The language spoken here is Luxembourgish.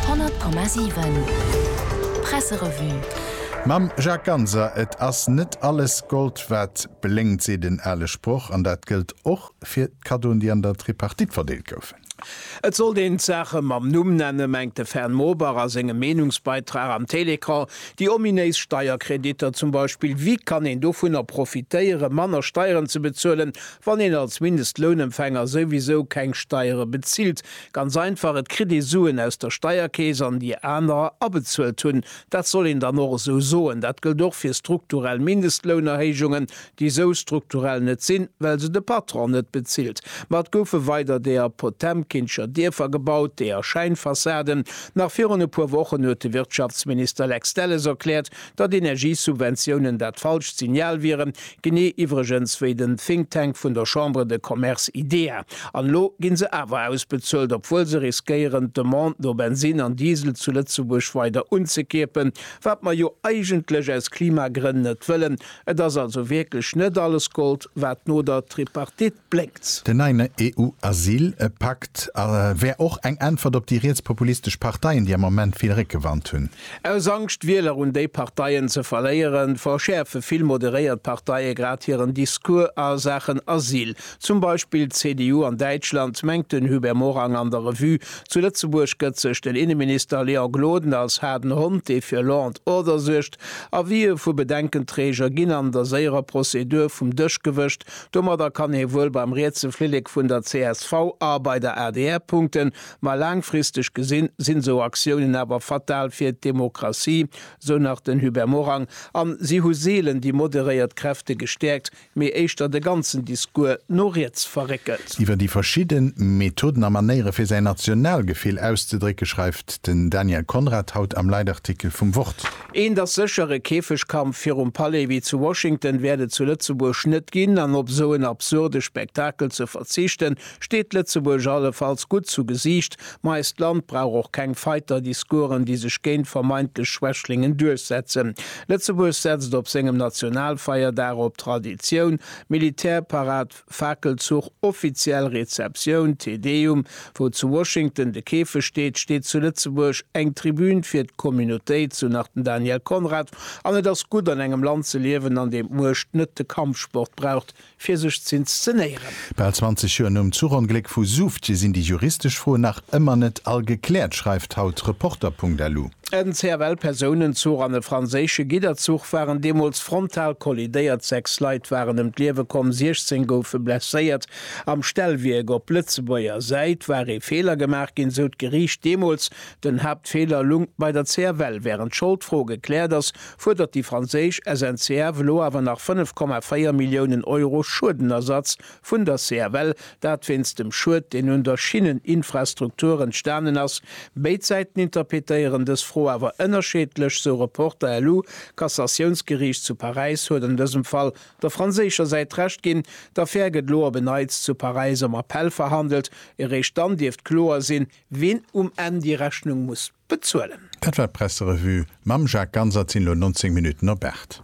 100,7 Presserevue. Mam Jacques Ganser Et ass net alles Gold wat blénkt, seet en ale Sproch, an dat gëllt och fir d'Kaddoen, déi an der Tripartite verdeelt goufen. Et sollt een d'Saache mam Numm nennen, mengt de Fern Mobach a sengem Meenungsbeitrag am Télécran. Déi ominéis Steierkreditter zum Beispill, wie kann een dovunner profitéieren, manner Steieren ze bezuelen, wann een als Mindestlounempfänger souwisou keng Steiere bezilt? Ganz einfach, et kritt ee Suen aus der Steierkeess an déi anerer abezuelt hunn. Dat soll een dann och esou soen. Dat gëllt och fir strukturell Mindestlounerhéijungen, déi esou strukturell net sinn, well se de Patron net bezilt. Ma et goufe weider deeër Potemkinscher Dierfer gebaut, deeër Schäinfassaden. Nach virun e puer Wochen huet de Wirtschaftsminister Lex Delles erkläert, datt Energiesubventiounen dat falscht Signal wieren, genee iwwregens wéi den Think Tank vun der Chambre de Commerce IDEA. An elo gi se awer ausbezuelt, obwuel se riskéieren d'Demande no Bensinn an Diesel zu Lëtzebuerg weider unzekierpen, wat mer jo eigentlech aus Klimagrënn net wëllen. Et ass also wierklech net alles Gold, wat no der Tripartite. blénkt. Den neien EU-Asyl-Pakt wär och eng Äntwert op déi rietspopulistesch Parteien, déi am Ament vill Réckewand hunn. Aus Angscht, Wieler un déi Parteien ze verléieren, verschäerfe vill moderéiert Parteie grad hiren Discours a Saachen Asyl. Zum Beispill d'CDU an Däitschland, mengt den Hubert Morang an der Revue. Zu Lëtzebuerg gëtt sech den Inneminister Léon Gloden als haarden Hond, dee fir Law and Order suergt, Avisë vu Bedenkenträger ginn an der séierer Prozedur vum Dësch gewëscht, Domadder kann hie wuel beim rietse Flillek vun der csv a bei der adr punkten, ma laangfristeg gesinn, sinn esou Aktiounen awer fatal fir d'Demokratie, esou nach den Hubert Morang. An si hu seelen déi moderéiert Kräfte gestäerkt, mee éischter de ganzen Discours no riets verréckelt. Iwwer déi verschidde Methoden a Manéiere fir säin Nationalgefill auszedrécke schreift den Daniel Conrad haut am Leitartikel vum Wort. Eent ass sécher, e Käfegkampf virum Palais wéi zu Washington wäert et zu Lëtzebuerg net ginn, an op esou en absurde Spektakel ze verzichten, steet Lëtzebuerg allefalls gutt zu Gesiicht. Ma eist Land brauch och keng Fighter-Discoursen, déi sech géint vermeintlech Schwächlingen duerchsetzen. Lëtzebuerg setzt op sengem Nationalfeierdag op Traditioun, Militärparad, Fakelzuch, offiziell Rezeptioun, Te Deum, Wou zu Washington de Käfeg steet, steet zu Lëtzebuerg eng Tribün fir d'Communautéit, sou nach den Daniel Conrad, an et ass gutt an engem Land ze liewen, an deem d'Muecht net de Kampfsport braucht, fir sech z'inszenéieren. Bal 20 Joer nom Zuchongléck vu Soufftje sinn déi juristesch Froen nach ëmmer net all gekläert, schreift haut Reporter.lu. En CFL-Persounenzuch an e franséische Gidderzuch waren deemools frontal kollidéiert. Sechs Leit waren ëm d'Liewe komm, 16 goufe blesséiert. Am Stellwierk op Lëtzebuerger Säit war ee Feeler gemaach ginn, sou d'Geriicht deemools. Den Haaptfeeler lungt bei der CFL. Wärend d'Scholdfro gekläert ass, fuerdert déi franséisch SNCF elo awer nach 5,4 Milliounen Euro Schuedenersatz vun der CFL, dat wéinst dem Schued, deen un der Schinneninfrastruktur entstanen ass. Béid Säiten interpetéieren dës Fro awer ënnerscheedlech, sou Reporter lu. D'Cassatiounsgeriicht zu Paräis huet an dësem Fall der franséischer Säit Recht ginn. D'Affär gëtt lo op en Neits zu Paräis am Appell verhandelt. Eréischt dann dierft kloer sinn, wien um Enn déi Rechnung muss bezuelen. Dat war d'Presserevue mam Jacques Ganser. Et sinn elo 19 Minutten op 8.